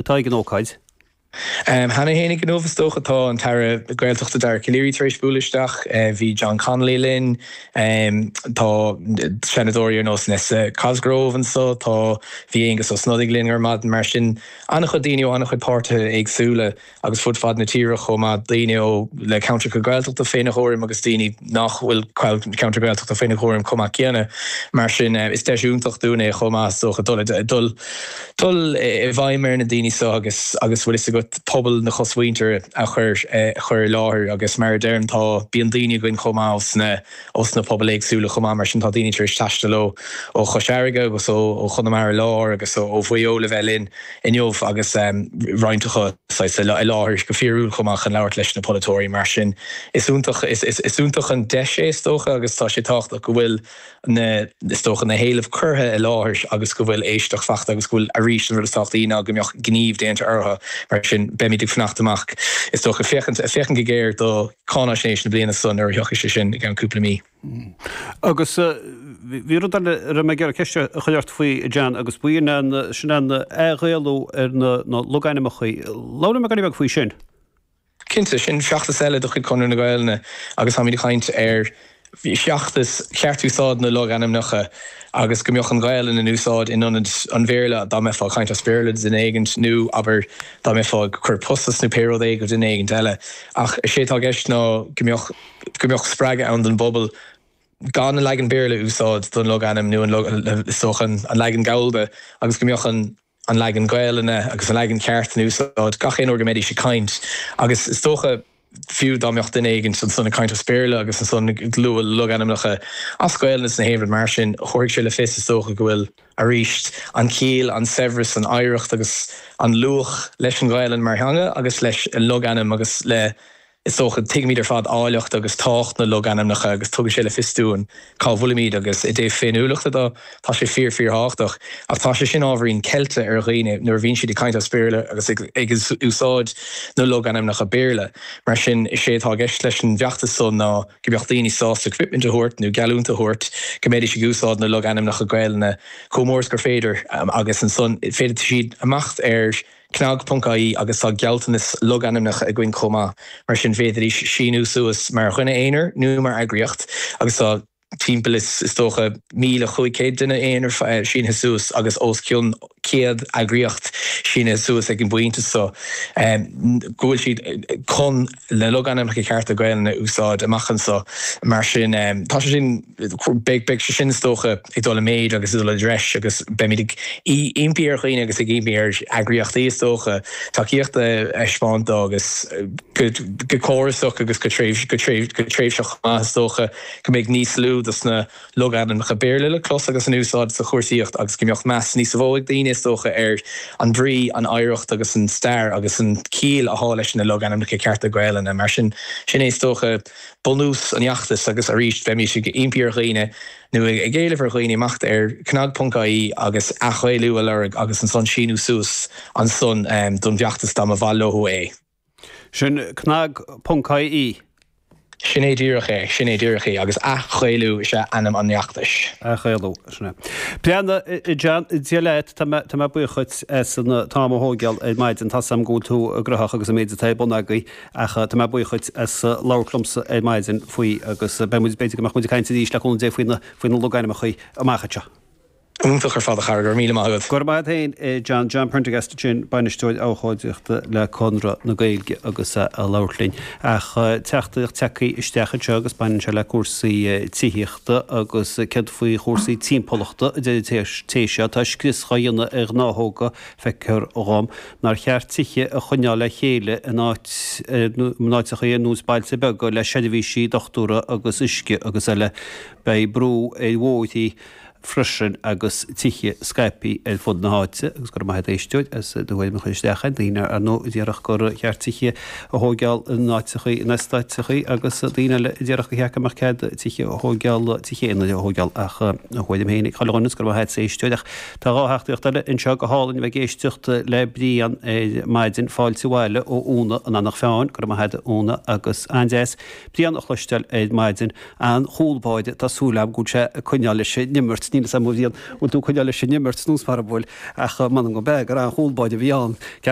atá ag an ócáid. Cheana féin inniu is dócha tá an tAire Gaeltachta Dara Calleary tar éis bualadh isteach, bhí John Connolly linn, tá Seanadóirí ar nós Nessa Cosgrove anseo, tá, bhí Aengus Ó Snodaigh linn ar maidin. Mar sin an-chuid daoine ó an-chuid páirtithe éagsúla agus fud fad na tíre chomh maith, daoine ó, le ceantracha Gaeltachta faoina gcúram agus daoine nach bhfuil ceantar Gaeltachta faoina gcúram chomh maith céanna. Mar sin is deis iontach dúinn é chomh maith is dócha dul i dul, dul i bhfeidhm ar na daoine seo agus agus bhfuil fhios agat, pobal na cosmhuintire a chur chur i láthair agus mar a deirim tá, bíonn daoine againn chomh maith ó sna ó sna pobail éagsúla chomh maith mar sin tá daoine tar éis taisteal ó ó Chois Fharraige agus ó ó Chonamara Láir agus ó Mhaigh Eo le bheith linn inniu agus roinnt acu saghas i láthair go fíorúil chomh maith chun labhairt leis na polaiteoirí mar sin is iontach is is iontach an deis é is dócha agus tá sé tábhachtach go bhfuil na, is dócha, na héilimh curtha i láthair agus go bhfuil éisteacht faighte agus go bhfuil, arís, an rud is tábhachtaí ná go mbeadh gníomh déanta orthu. Mar sin, beimid ag fanacht amach, is dócha, féachaint, féachaint go géar go cáinaisnéis na bliana so nuair a thiocfaidh sé sin i gceann cúpla mí. Agus bhí rud eile a raibh mé ag iarraidh ceist a chur ort faoi, John, agus baineann sé leis an athGhaelú ar na logainmneacha. Labhair liom go beag faoi sin. Cinnte, sin feachtas eile de chuid Chonradh na Gaelainne agus táimid ag caint ar feachtas cheart úsáid na logainmneacha agus go mbeadh an Ghaelainn in úsáid in ionad an Bhéarla dá mbeifeá ag caint as Béarla le duine éigin nó, abair, dá mbeifeá ag cur post as nó pé rud é go duine éigint eile. Ach is é atá i gceist ná go mbeadh spreagadh ann don bpobal gan an leagan Béarla a úsáid don logainm nó an is dócha an leagan Gallda agus go mbeadh an an leagan Gaelainne agus an leagan ceart in úsáid gach aon uair go mbeidís ag caint, agus is dócha, fiú dá mbeadh duine éigint ansan ag caint as Béarla agus ansan ag lua logainmneacha as Gaelainn ins an áireamh mar sin, go gcuirfidh sé le fios, is dócha, go bhfuil, aríst, an chiall, an saibhreas, an oidhreacht agus an luach leis an Ghaelainn mar theanga agus leis an logainm agus le. Is dócha, tuigimid ar fad áilleacht agus tábhacht na logainmneacha agus tugann sé le fios dúinn cá bhfuilimid agus, i dtaobh féiniúlachta de, tá sé fíor, fíorthábhachtach. Ach tá sé sin ábhairín ceilte ar dhaoine nuair a bhíonn siad ag caint as Béarla agus ag úsáid na logainmneacha Béarla. Mar sin, is é atá i gceist leis an bhfeachtas so ná go mbeadh daoine sásta coimitmint a thabhairt nó geallúint a thabhairt go mbeidís ag úsáid na logainmneacha Gaelainne chomh mór agus is gur féidir agus ansan féadfaidh siad imeacht ar Cnag ponc ie agus tá gealltanas na logainmneacha againn chomh maith, mar sin d'fhéadfaidís síniú suas mar dhuine aonair nó mar eagraíocht agus tá timpeall is dócha 1,500 duine aonair sínithe suas agus os cionn 100 eagraíocht sínithe suas ag an bpointe so go bhfuil siad chun le logainmneacha cearta Gaelainne a úsáid amach anseo. Mar sin, tá sé sin, beidh sé sin, is dócha, ag dul i méid agus ag dul i dtreis agus beimid ag impí ar dhaoine agus ag impí ar eagraíochtaí, is dócha, tacaíocht a thaispeáint dó agus go córasach agus go tréimhseach chomh maith. Is dócha go mbeidh níos lú dos na. logainmneacha Béarla le clos agus in úsáid sa chúrsaíocht agus go mbeadh meas níos mhó ag daoine, is dócha, ar an mbrí, an oidhreacht agus an stair agus an chiall athá leis na logainmneacha cearta Gaelainne. Mar sin, sin é, is dócha, bunús an fheachtais agus, arís, bheimís ag impí ar dhaoine, nó ag éileamh ar dhaoine, imeacht ar cnag ponc ie agus athGhaelú a lorg agus ansan síniú suas ansan don bhfeachtas dá mba mhaith leothu é. Sin cnag ponc ie. Sin é díreach é. Sin é díreach é. Agus AthGhaelú is ea ainm an fheachtais. AthGhaelú, sin é. Breá, Dia leat, tá mé tá mé buíoch dhuit as an t-am a thógáil ar maidin. Tá 's agam go bhfuil tú graitheach agus an méid atá ar bun agaibh ach tá mé buíoch dhuit as labhairt liomsa ar maidin faoi agus beidh muid, b'fhéidir go mbeadh muid ag caint arís le cúnamh Dé faoi na logainmneacha amach anseo. Iontach ar fad a chara, go raibh míle maith agat. Go raibh maith a't fhéin a John, John Prendergast ansin, Bainisteoir Abhchóideachta le Conradh na Gaeilge agus a labhairt linn. Ach teachtaireacht tagthaí isteach anseo agus baineann sé le cúrsaí tithíochta agus céard faoi chúrsaí timpeallachta a deir an té seo atá scrios dhá dhéanamh ar ghnáthóga, feicthear dhom nár cheart tithe a choinneáil le chéile in áiteachaí ar nós bailte beaga le seirbhísí dochtúra agus uisce agus eile. Beidh brú ar bhóithrí. freisin agus tithe scaipthe ar fud na háite agus go raibh maith agat a éisteoir as do thuairim a chur isteach tá daoine ar ndóigh a déarfadh gur cheart tithe a thóigeáil in áiteachaí, in eastáiteachaí agus daoine eile a déarfadh gur cheart go mbeadh cead tithe a thóigeáil, tithe aonair a thóigeáil ach a thuairim féin ag chuile dhuine agus go raibh maith agat a éisteoir ach tá dhá theachtaireacht eile anseo go hálainn a bheith ag éisteacht le Brian ar maidin fáilte abhaile ó Úna in Eanach Mheáin go raibh maith agat Úna agus an-deas Brian a chloisteáil ar maidin an-chúl báire, tá súil agam go bhfuil sé ag coinneáil leis an imirt, níl fhios agam a Bhriain an bhfuil tú ag coinneáil leis an imirt nó mara bhfuil ach m'anam go mb'fhearr gur an-chúl báire a bhí ann.